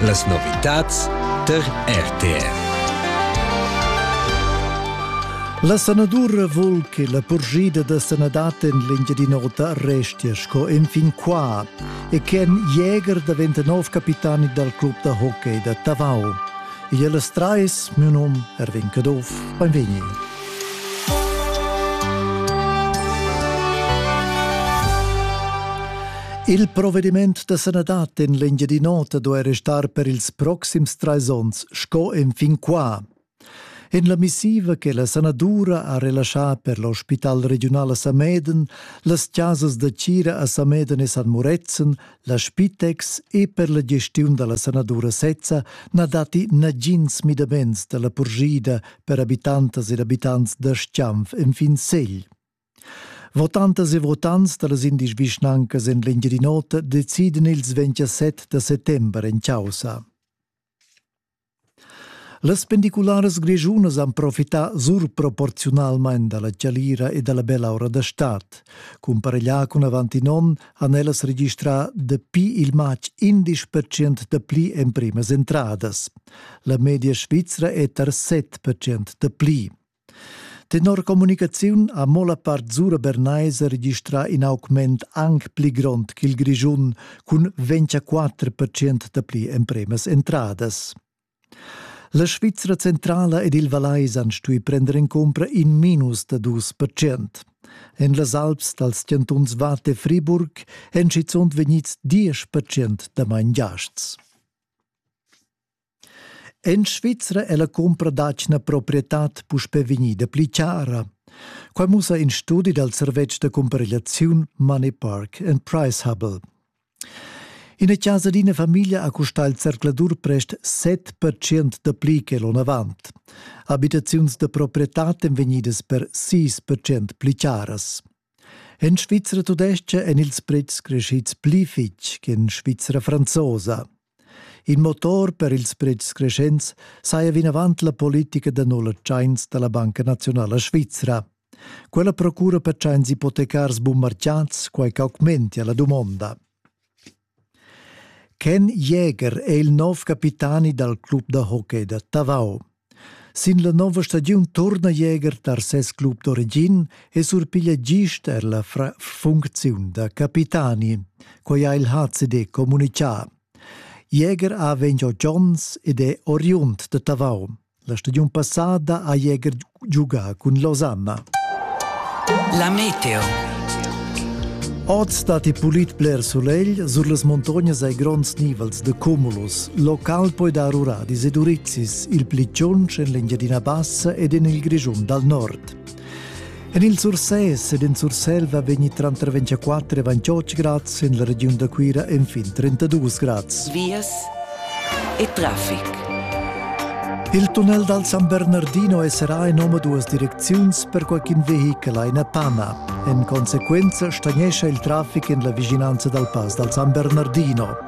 Las novitads tar RTV. La sanadura vul che la purschida da sanadad en l'Engiadin'Ota restia sco enfin qua e che in jäger daventa nov capitani dal club da hockey da Tavau. Igl es trais, miu num Erwin Caduff, beinvegni. Il provediment da sanadad en l'Engiadin'Ota do era star per ils proxims trais onns sco enfin qua. En la missiva che la sanadura ha relaschà per l'ospital regional a Sameden, las chasas da Cira a Sameden e San Murezzan, La Spitex e per la gestiun dalla sanadura sezza na datti nagins midaments dalla purschida per habitantas ed abitants da Stianf enfin Segl. Votantas e votants dallas indisch vischnancas en l'Engiadin'Ota decidan ils 27 da settember en caussa. Las pendicularas grischunas han profità surproporziunalmain da la chalira e da la bella ora da stad. Cumpareglià cun avant in onn han ellas registrà dapi il matg 11 percent dapli emprimas entradas. La media svizra è tar 7 percent dapli. Tenor communicaziun ha mo la part Zura Bernais registrà in augment anc pli grond ch'il Grischun cun 24 percent dapli empremas entradas. La Svizra centrala ed il Vallais han stuì prender en cumpra in minus da dus percent. En las Alps dals chantuns Watt e Friburg èn schizunt vegnids diesch percent damain giasts. En Svizra è la cumpra d'atgna proprietad puspè vegnida pli chara. Quai mussa in studi dal servetsch da cumparegliaziun Moneypark and Price Hubble. Ina casa d'ina famiglia ha custà il zercladur prest 7% da pli che l'onavant. Abitaziuns da proprietad èn vegnidas per 6% pli charas. En Svizra tudestga èn ils pretschs crescids pli fitg che en Svizra franzosa. In motor per ils pretschs creschents saja vinavant la politica da nulla tschains da la Banca Naziunala Svizra. Quella procura per tschains ipotecars bummarciats quai ch'augmentia la dumonda. Ken Jäger è il nov capitani dal club da hockey da Tavau. Sin la nova stagiun turna Jäger tar ses club d'origin e surpiglia gist er la funcziun da capitani. Quai ha il HCD communitgà. Jäger ha vegn oz Jones ed è oriund da Tavau. La stagiun passada ha Jäger giugà cun Losanna. La meteo. Oz datti pulit bler sulegl, sur las montognas hai gronds nivels de cumulus. Local poi dar uradis e durit. indizis il pli tschunsch en l'Engiadina Bassa ed en il Grischun dal nord. En il Sursès ed en Surselva vegni tranter 24 e 28 grads, en la regiun da Cuira enfin 32 grads. Vias e traffic. Il tunnel dal San Bernardino è serà in omaduas direcziuns per qualcun vehichel a Panna. En conseguenza stagnescha il traffic en la vicinanza dal pass dal San Bernardino.